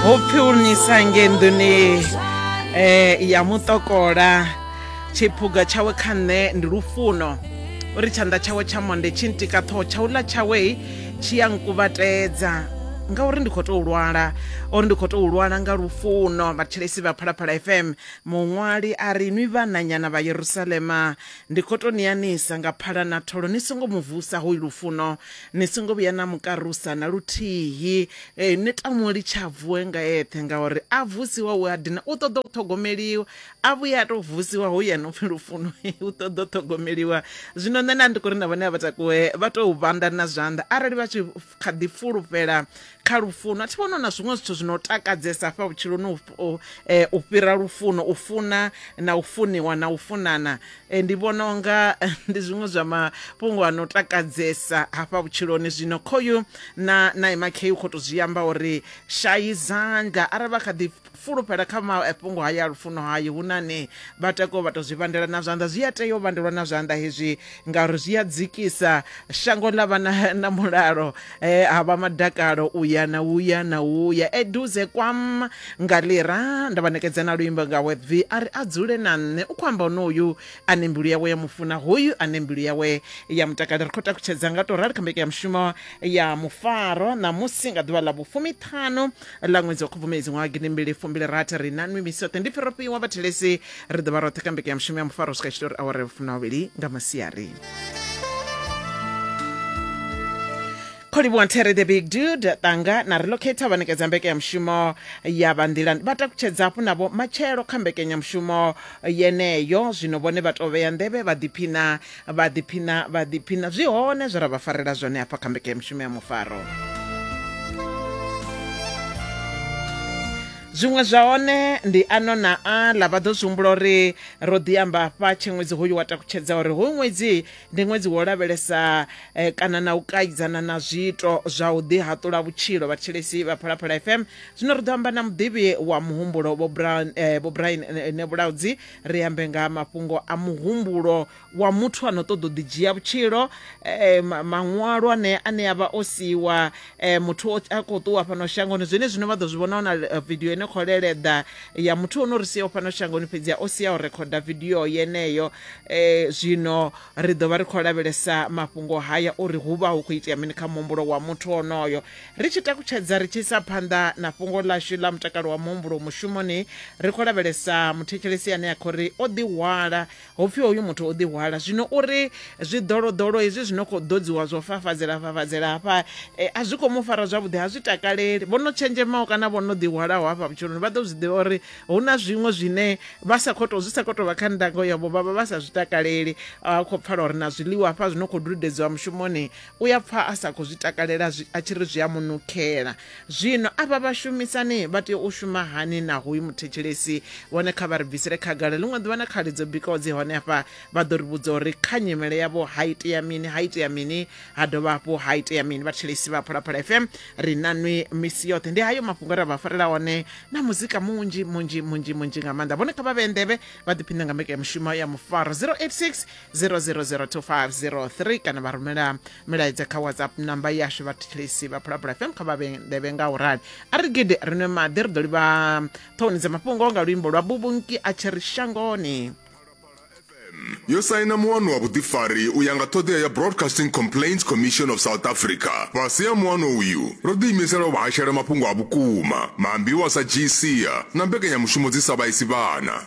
hopfi u nisa ngenḓuni eh ya mutokola tshiphuga tshawe kha nṋe ndi lufuno uri tshanḓa tshawe tsha monde tshi ntika ṱhoho tshauḽa tshawe tshi ya nkuvhatedza ngauri ndi khou tou lwala uri ndi khou tou lwala nga lufuno vhathetshelesi vha phalaphala fm muṅwali a ri nwi vhananyana vha yerusalema ndi khou tou niyanisa nga phala na tholo ni songo mu vusa hoyu lufuno Ni songo vhuya na mu karusa na luthihi, ee, ni ta mu litsha a vuwe nga eṱhe, ngauri a vusiwa u a dina, u ṱoḓa u ṱhogomeliwa. A vhuye a tou vusiwa, hoyu a no pfi Lufuno, u ṱoḓa u ṱhogomeliwa. Zwino nṋe nda ndi khou ri na vhane a vha takuwe vha tou vhanda na zwanḓa arali vha tshi kha ḓi fulufhela kha lufuno a thi vhona na zwiṅwe zwithu zwino takadzesa fha vhutshiloni u eh, fhira lufuno u funa na u funiwa na u funana eh, ndi vhona unga eh, ndi zwiṅwe zwa mafhungo ano takadzesa hafha vhutshiloni zwino khoyu na na imakhe u kho to zwi amba uri shayi zandla arali vha kha ḓi fulufhela kha mafhungo haya a lufuno hayo hu na ne vha takuwa vha tou zwi vhandela na zwanḓa zwi a tea u vhandelwa na zwanḓa hezwi ngauri zwi a dzikisa shango ḽa vha na, na mulalo e, ha vha madakalo u ya na u ya na u ya eduze kwam nga lira nda vha nekedza na luimbo nga webvi a ri a dzule na nṋe u khou amba honoyu ane mbilu yawe ya mufuna hoyu ane mbilu yawe ya mutakalo ri khou takutshedza nga tou rali kha mbekanya mushumo ya mufaro ṋamusi nga ḓuvha ḽa vhufumi ṱhanu ḽa ṅwedzi wa khubvumedzi ṅwaha gidi mbili fumbili rathi ri na nwi misoṱe ndi pfi ro fhiwa vhathelesi ri ḓo vha roṱhe ka mbeke ya mushumo ya mufaro u swika tshitori awara ya vhufumi na vhavhili nga masiari kholivhuwa nthere the big dude tanga na relocate vha nekedza mbeke ya mushumo ya vha nḓilani vha takutshedza hafhu navho matshelo kha mbekenyamushumo yeneyo zwino vhone vha tou vhea nḓevhe vha ḓiphina vha ḓiphina vha ḓiphina zwi hone zwe ra vha farela zwone hafha kha mbekanyamushumo ya mufaro zwiṅwe zwa hone ndi ano na aḽa vha ḓo zwi humbula uri ro ḓi amba afha tshe ṅwedzi hoyu wa takutshedza uri hoyu ṅwedzi ndi ṅwedzi wo lavhelesa eh, kana na u kaidzana na zwiito zwa u ḓihaṱula vhutshilo vhathetshelesi vha phalaphala fm zwino ri ḓo amba na muḓivhi wa muhumbulo vho Brown- eh, vho brian eh, nebulaudzi ri ambe nga mafhungo a muhumbulo wa muthu ano ṱoḓa u ḓi dzhia vhutshilo eh, maṅwalo ane ane avha o siiwa eh, muthu a khou ṱuwa fhano shangoni zwine zwine vha ḓo zwi vhona na eh, video ine khou leleḓa ya muthu ono ri siaho fhano shangoni fhedzi o sia o rekhoda video yeneyo eh, zwino ri ḓo vha ri khou lavhelesa mafhungo haya uri hu vha hu khou itea mini kha muhumbulo wa muthu onoyo Ri tshi takutshedza ri tshi isa phanḓa na fhungo ḽashu ḽa mutakalo wa muhumbulo mushumoni, ri khou lavhelesa muthetshelesi ane a khou ri o ḓihwala, ho pfi hoyu muthu o ḓihwala. Zwino u ri zwiḓoloḓolo hezwi zwi no khou ḓodziwa zwo fafadzela-fafadzela hafha a zwi khou mu fara zwavhuḓi, ha zwi takaleli. Vho no tshenzhemaho kana vho no ḓihwalaho hafha vhutshiloni vha ḓo zwi ḓivha uri hu na zwiṅwe zwine vha sa khou tou, zwi sa khou tou vha kha ndango yavho vha vha vha sa zwi takaleli. A khou pfala uri na zwiḽiwa hafha zwi no khou dudedziwa mushumoni, u ya pfa a sa khou zwi takalela a tshi ri zwi a mu nukhela zwino avha vhashumisani vha tea u shuma hani na hoyu muthetshelesi vhone kha vha ri bvisele khagala ḽiṅwe ḓuvha na khali dzo bikaho dzi hone hafha vha ḓo ri vhudza uri kha nyimele yavho ha itea mini ha itea mini ha dovha hafhu ha itea mini vhathetshelesi vha phalaphala fm ri na nwi misi yoṱhe ndi hayo mafhungo ra vha farela one na muzika munzhi munzhi munzhi munzhi nga maanḓa vhone kha vha vhe nḓevhe vha ḓiphine nga mbekanyamushumo ya mufaro 086 0002503 kana vha rumela milaedza kha whatsapp namba yashu vhathetshelesi vha phulapula fm kha vha vhendevhe nga u rali a ri gidi ri nwe maḓi ri ḓo livha ṱhoni dza mafhungo nga luimbo lwa bubunki a tshi ri shangoni yo saina muwano wa vhuḓifari u ya nga ṱhoḓea ya broadcasting complaints commission of south africa fhasi ha muwano uyu ro ḓiimisela u vha hashela mafhungo a vhukuma maambiwa sa gca na mbekanyamushumo dzi sa vhaisi vhana